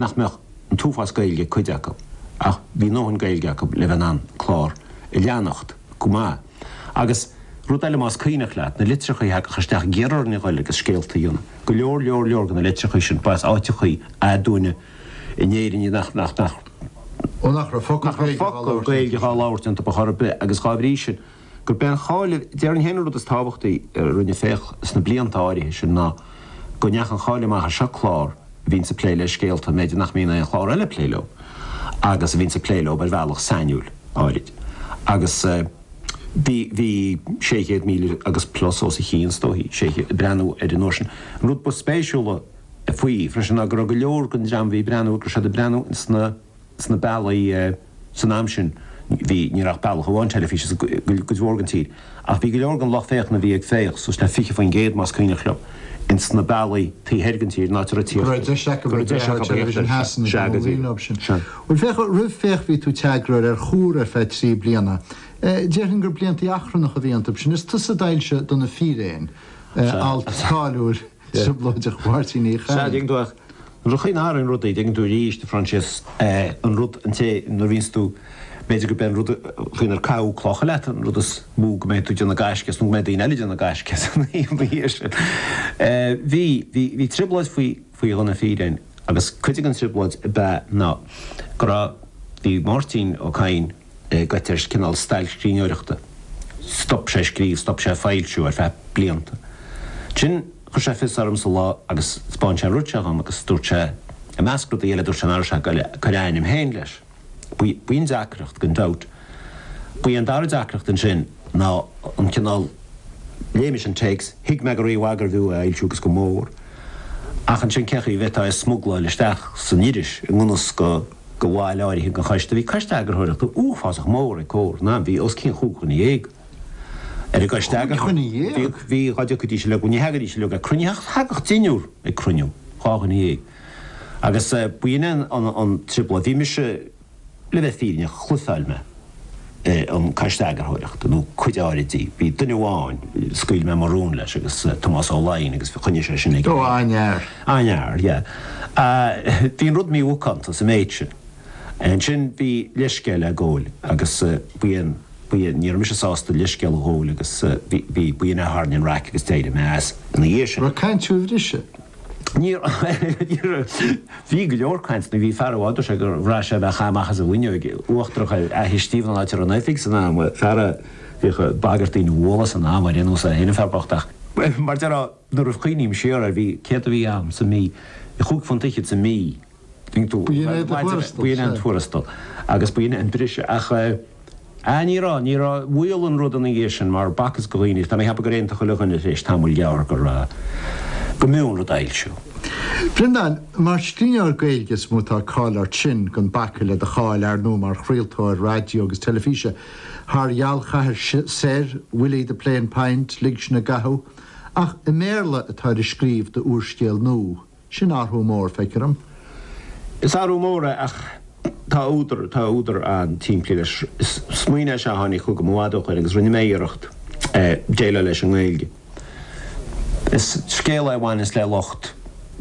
nach mbeadh an t-uafás Gaeilge ag cuid acu, ach bhí a ndóthain Gaeilge acu le bheith in ann an clár a leanacht go maith. Agus, rud eile más cuimhneach leat, na litreacha a thagadh isteach ag iarraidh orainn a ghoil agus scéalta a dhéanamh. Go leor, leor, leor de na litreacha sin, ba as áiteachaí aduaine in Éirinn iad nach, nach, nach. Ó nach raibh focal Gaeilge dhá labhairt iontu chor ar bith agus dhá bhrí sin, gurb é an cháil, déarfainn féin an rud is tábhachtaí a rinne Féach sna blianta áirithe sin ná go ndeachaigh an cháil amach air, seo clár a bhíonns ag plé le scéalta b'fhéidir nach mbíonn aon chlár eile ag plé leo agus a bhíonns ag plé leo ar bhealach sainiúil, áirid. Agus bhí, bhí 600,000 agus plus os a chionn is dóichí, 600, ag breathnú air an uair sin. An rud ba spéisiúla faoi freisin ná go raibh go leor den dream a bhí ag breathnú go raibh siad ag breathnú ins na. sna bealaí san am sin, bhí, ní raibh ach bealach amháin teilifíse sa, cuid mhór den tír, ach bhí go leor den lucht féachana a bhí ag Féach, suas le 20%, más cuimhneach liom, in sna bealaí taobh thoir den tír, in áit a raibh tíocht, go raibh deis acu a bheith ag féachaint ar Television Shasana, sea, go dtí, sea. Bhuel, féach, roimh Féach bhí tú i d'eagarthóir ar Chomhar ar feadh trí bliana. Déarfainn gur blianta achrannacha a bhí iontu sin. Is tusa a d'fhoilsigh Do na Fíréin, alt cáiliúil. Trioblóideach Mháirtín Uí Chadhain. Rachainn thar an rud é, dtuigeann tú arís, a Phroinsias, an rud an té nuair a bhíonns tú, b'fhéidir go mbeidh an rud faoin ar caitheadh clocha leat an rud is mó go mbeidh tú ag déanamh gaisce as nó go mbeidh daoine eile ag déanamh gaisce as ina dhiaidh sin. Bhí, bhí, bhí trioblóid faoi, faoi Do na Fíréin agus cuid den trioblóid ab ea ná go raibh, bhí Máirtín Ó Cadhain, goite ar, cineál stail scríbhneoireachta. Stop sé scríobh, stop sé foilsiú ar feadh blianta. Ansin chuir sé fios ormsa lá agus spáin sé an rud seo dhom agus dúirt sé, i measc rudaí eile dúirt sé nach raibh sé ag cur a ainm féin leis. B'in deacracht, gan dabht. Ba í an dara deacracht ansin ná an cineál, léigh mise an téacs, thuig mé go rímhaith gurbh fhiú é a fhoilsiú agus go mór, ach ansin cé chaoi a bhféadfá é a smugláil isteach san iris i ngan fhios do. do bhaill áirithe den choiste, bhí coiste eagarthóireachta uafásach mór ag Comhar, an t-am, bhí os cionn chúig dhuine dhéag ar an gcoiste eagarthóireachta. Chúig dhuine dhéag? Bhí, dhá dtiocfaidís uilig, ní theagaidís uilig ag cruinniú, ach thagadh deichniúr ag cruinniú, dhá dhuine dhéag. Agus b'in é an trioblóid, bhí mise, le bheith fírinneach, bhlufáil mé. an Coiste Eagarthóireachta, nó cuid áirid di. Bhí duine amháin, scaoil mé mo rún leis, agus Tomás Ó Laighin, agus choinnigh sé sin aige. Ó, aniar. Aniar, yeah. Bhí an rud mímhacánta sa méid sin. Ansin, bhí leithscéal le goil, agus bhí, bhí, ní raibh mise sásta leithscéal a ghoil, agus bhí, bhí, b'in é a tharraing an raic agus d'éirigh mé as ina dhiaidh sin. Raibh caint faoi bhriseadh? Níor Bhí go leor caint nuair bhí fear amháin, dúirt sé gur bhraith sé a bheith ag caitheamh amach as an bhfuinneoig, uachtarach ar Fhaiche Stiabhna an áit a raibh an oifig san am, fear a bhíodh ag bagairt daoine a bhualadh san am, ar aon nós, é féin an fear bocht ach, mar déarfá, nuair a chuimhním siar air, bhí, céard a bhí ann sa mí, chúig phunt fhichead sa mí. B'in é do thuarastal? B'in é an tuarastal agus b'in é an briseadh ach ah ní raibh, ní raibh, bhuail an rud ina dhiaidh sin mar facthas do dhaoine agus tá mé ag ceapadh gur aontaigh chuile dhuine tar éis tamaill ghearr gur, go mb'fhiú an rud a fhoilsiú. Breandán, Mar scríbhneoir Gaeilge is mó atá cáil ort, sin, gan bacadh le do cháil, ar ndó, mar chraoltóir raidió agus teilifíse Thar Ghealchathair Soir, Willie the Plain Pint, Lig Sinn i gCathú, ach i mBéarla atá tú ag scríobh d'úrscéal nua. Sin athrú mór, feictear dom. Is athrú mór é, ach tá údar, tá údar an-tsimplí leis. Is smaoineamh é seo a tháinig chugam i bhfad ó shoin, agus rinne mé iarracht é a dhéileáil leis i nGaeilge. Is scéal é a bhaineas le lucht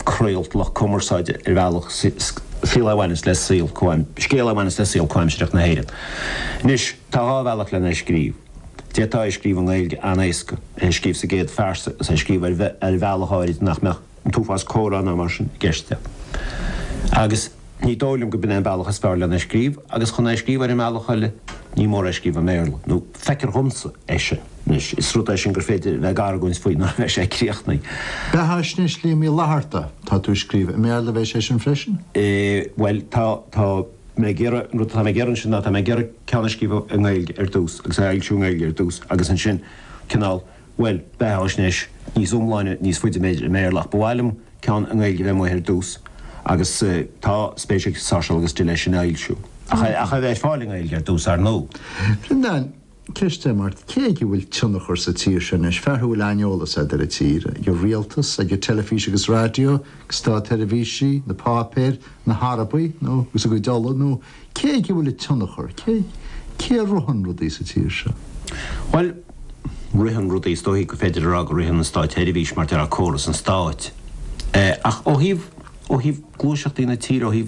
craolta, lucht cumarsáide ar bhealach, scéal a bhaineas, scéal é a bhaineas le saol comhaimsireach na hÉireann. Anois, tá dhá bhealach len é a scríobh. D'fhéadfá é a scríobh i nGaeilge an-éasca, é a scríobh sa gcéad phearsa agus é a scríobh ar bhealach áirid nach mbeadh, an t-uafás comhrá ná mar sin i gceist de. Agus ní dóigh liom gurb in é an bealach is fearr len é a scríobh, agus chun é a scríobh ar an mbealach eile ní mór é a scríobh i mBéarla, nó feictear dhomsa é sin. Anois, is rud é sin gur féidir a bheith ag argóint faoi nuair a bheidh sé críochnaithe. Beathaisnéis Liam Uí Fhlaithearta, tá tú ag scríobh i mBéarla a bheidh sé sin freisin? Bhuel, tá, tá mé ag iarraidh, an rud atá mé ag iarraidh ansin ná, tá mé ag iarraidh ceann a scríobh i nGaeilge ar dtús, agus é a fhoilsiú i nGaeilge ar dtús, agus ansin cineál Bhuel, beathaisnéis níos iomláine, níos faide, b'fhéidir, i mBéarla, ach ba mhaith liom ceann i nGaeilge a bheith amuigh ar dtús, agus tá spéis ag Sáirséal agus Dill ina fhoilsiú. Ach a bheith ar fáil i nGaeilge ar dtús, ar ndó. Breandán, Ceist agam ort, cé aige a bhfuil tionchar sa tír seo anois, fear a bhfuil an-eolas agat ar an tír, ag an rialtas, ag an teilifís agus raidió, ag státseirbhísigh, na páipéir, na hArabaigh nó, agus a gcuid ola, nó. Cé aige a bhfuil an tionchar? Cé a ritheann rudaí sa tír seo? Bhuel, ritheann rudaí, is dóichí gur féidir a rá go ritheann an státseirbhís, mar a déarfá, córas an stáit. Ach ó thaobh, ó thaobh gluaiseachtaí na tíre, ó thaobh.